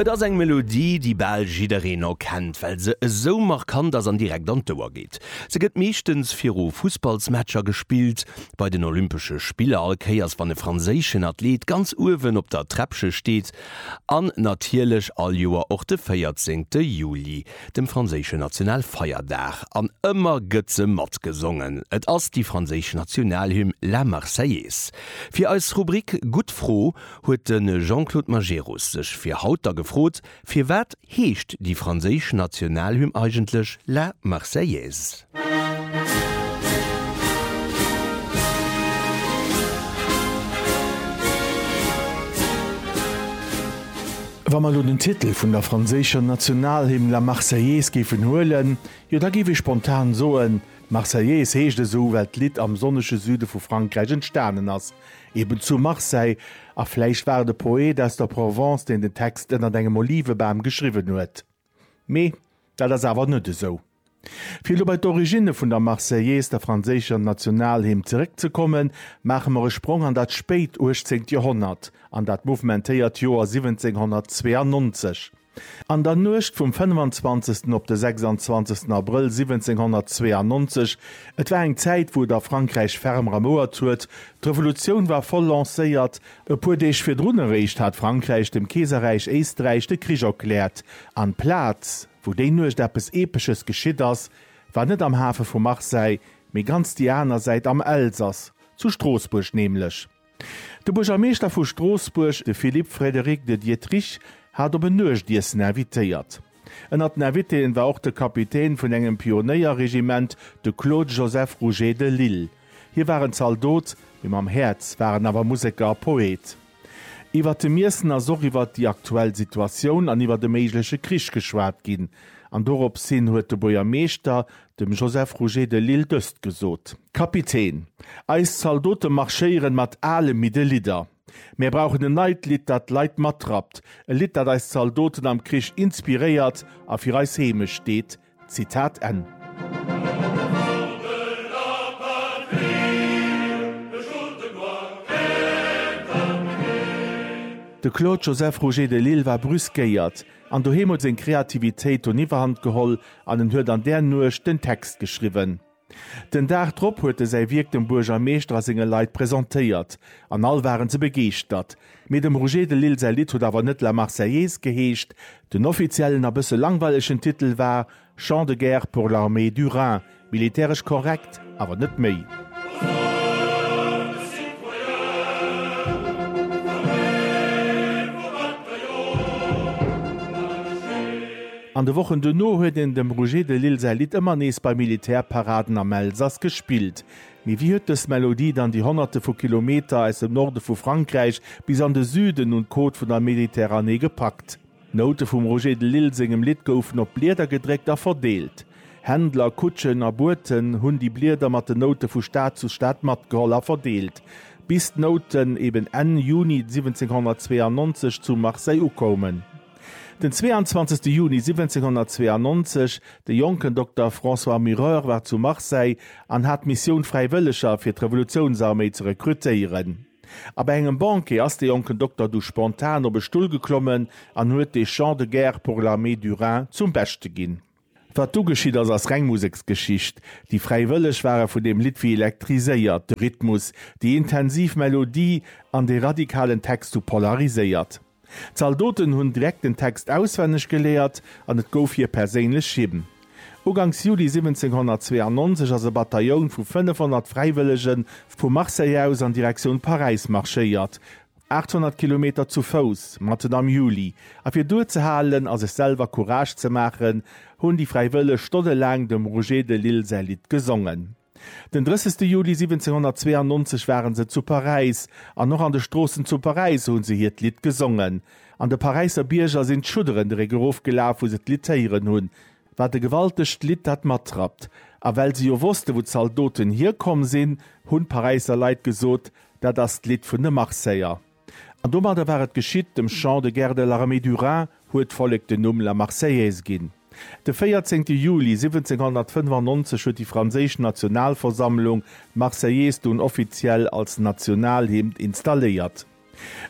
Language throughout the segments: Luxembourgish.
Et ass eng Melodie, déi bal jiddereen o kennt, well se esou markant ass an direkt an d'Ouer geet. Se gëtt meeschtens viru Fussballsmatcher gespillt, bei den Olympesche Spiller, all Kéiers wann e franséischen Athleet ganz uewen op der Träppche steet an natierlech all Joer och de 14. Juli, dem franséischen Nationalfeierdag. An ëmmer gëtt se matgesongen, et ass déi franséisch Nationalhymn La Marseillaise. Fir eis Rubrik Gutt Fro! huet de Jean-Claude Majerus sech fir haut da gefrot, Firwat heescht déi franséisch Nationalhymn eigentlech La Marseillaise? Wa mer elo den Titel vun der franséischer Nationalhymn La Marseillaise géifen huelen, jo da géif ee spontan soen, D'Marseillaise heescht esou, well d'Lidd am sonnege Süde vu Frankräich entstanen ass. Eben zu Marseille. A vläicht war et e Poet aus der Provence, deen den Text ënnert engem Olivebam geschriwwen huet. Mee dat ass awer net esou. Fir elo bei d'Originne vun der Marseillaise, der franséischer Nationalhymn, zeréckzekommen, maache mer e Sprong an dat spéit uechtzeent Joerhonnert, an dat mouvementéiert Joer 1792. An der Nuecht vum 25. op de 26. Abrëll 1792, et war eng Zäit, wou et a Frankräich ferm ramouert huet, d'Revolutioun war voll lancéiert, e puer Deeg virdrun eréischt hat Frankräich dem Keeserräich Éisträich de Krich erkläert, an d'Plaz, wou déi Nuecht eppes Epesches geschitt ass, war net am Hafe vu Marseille, mee ganz déi aner Säit, am Elsass, zu Stroossbuerg nämlech. De Buergermeeschter vu Stroossbuerg, de Philippe Frédéric de Diederich, hat op en Nuechtiessen invitéiert. Ënnert den Invitéen war och de Kapitän vun engem Pionéierregiment, de Claude Joseph Rouget de Lisle. Hie war en Zaldot, mee mam Häerz war en awer Museker a Poet. Iwwert dem Iessen ass och iwwert déi aktuell Situatioun an iwwert e méigleche Krich geschwat ginn an doropshin huet de Buergermeeschter dem Joseph Rouget de Lisle dëst gesot, Kapitän, eis Zaldote marschéieren mat ale midde Lidder. Mär brauchen en neit Lidd, dat d'Leit matrappt, e Lidd, dat eis Zaldoten am Krich inspiréiert a fir eis Heemecht steet. Zitat Enn. De Claude Joseph Rouget de Lisle war brüskéiert, An doheem huet seng Kreativitéit dunn Iwwerhand geholl an en huet an där Nuecht den Text geschriwwen. Den Dag drop huet e säi Wierk dem Buergermeeschter a senge Leit presentéiert an all waren se begeeschtert. Mee dem Roger de Lisle säi Lidd huet awer net La Marseillaise geheescht. Den offiziellen a bësse langweilegen Titel war Chant de guerre pour l'armée du Rhin, militäresch korrekt, awer net méi. An de Wochen duerno huet een dem Roger de Lisle säi Lidd ëmmer nees bei Militärparaden am Elsass gespillt. Mee wéi huet dës Melodie dann déi Honnerte vu Kilometer aus dem Norde vu Frankräich bis an de Süden un d'Côte vun der Mediterranée gepackt? D'Noute vum Roger de Lisle sengem Lidd goufen op Blieder gedréckt a verdeelt. Händler, Kutschen a Boten hunn déi Blieder mat den Noute vu Stad zu Stad matgeholl a verdeelt, bis d'Nouten eben Enn Juni 1792 zu Marseille ukoumen. Den 22 Juni 1792, de jonken Dokter François Mureur war zu Marseille an hat d'Missioun Fräiwëlleger fir d'Revolutiounsarméi ze rekrutéieren. A bei engem Banquet ass de jonken Dokter du spontan op e Stull geklommen an huet de Chant de guerre pour l'armée du Rhin zum Beschte ginn. Wat du geschitt ass, ass reng Museksgeschicht. Déi Fräiwëlleg ware vun deem Lidd wéi elektriséiert. De Rhythmus, déi intensiv Melodie an de radikalen Text hu polariséiert. D'Zaldoten hunn direkt den Text auswenneg geléiert an et gouf hir perséinlech Hymn. Uganks Juli 1792 ass e Batailloun vu 500 Fräiwëllege vu Marseille aus an Direktioun Paräis marschéiert, 800 Kilometer zu Fouss, matten am Juli, a fir duerzehalen a sech selwer Courage ze maachen, hunn déi Fräiwëlleg stonnelaang dem Roger de Lisle säi Lidd gesongen. Den 30 Juli 1792 ware se zu Paräis, an och an de Stroossen zu Paräis hu se hiert Lidd gesongen. An de Paräisser Bierger sinn d'Schudderen de Réck erof gelaf, wou se d'Lidd héieren hunn. Wat e gewaltegt Lidd dat matrappt! A well se jo wosste wou d'Zaldoten hierkomm sinn, hunn d'Paräisser Leit gesot, Dat ass d'Lidd vun de Marseiller. An domadder war et geschitt, dem Chant de guerre de l'armée du Rhin huet d'Vollek den Numm La Marseillaise ginn. De 14 Juli 1795 huet déi franséisch Nationalversammlung d'Marseillaise dunn offiziell als Nationalhymn installéiert.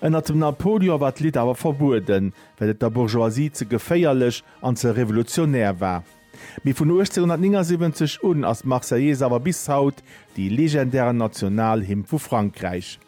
Ënnert dem Napoleon war d'Lidd awer verbueden, well et der Bourgeoisie ze geféierlech an ze revolutionär war. Mee vun 1879 un ass d'Marseillaise awer bis haut déi legendären Nationalhymn vu Frankräich.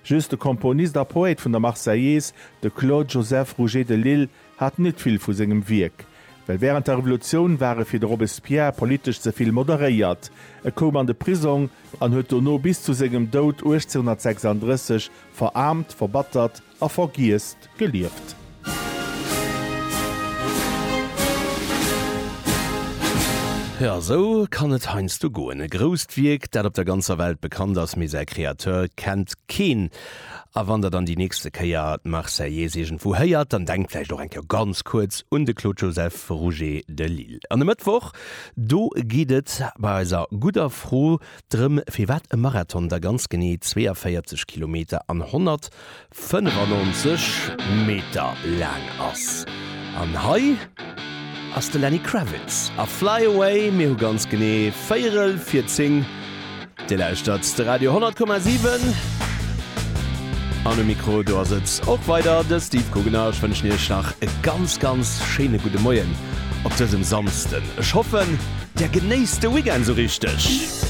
Just de Komponist a Poète vun der Marseillaise, de Claude Joseph Rouget de Lisle, hat net vill vu sengem Wierk, well wärend der Revolutioun war e fir de Robespierre politesch ze vill moderéiert. E koum an de Prisong an huet dono bis zu sengem Doud 1836 veraarmt, verbattert, A vergiesst gelieft. Jo, esou kann et heiansdo goen. E grousst Wierk, dat op der ganzer Welt bekannt ass, mee säi Kreateur kennt keen. A wann der dann déi nächste Kéier d'Marseillaise iergendwou héiert, dann denkt vläicht och eng Kéier ganz kuerz un de Claude Joseph Rouget de Lisle. An e Mëttwoch, do geet et bei eiser gudder Fro drëm, firwat e Marathon da ganz genee 42 Kilometer an 100 95 Meter laang ass. An hei ass de Lenny Kravitz a Fly Away. Mir hu ganz genee véierel vir 10. Dir lauschtert de Radio 10,7. An um Mikro, do ass et och weider de Steve Guggenau. Ech wënschen Iech nach e ganz, ganz schéine gudde Moien op dësem Samsden. Ech hoffen, Der genéisst de Weekend esou richteg.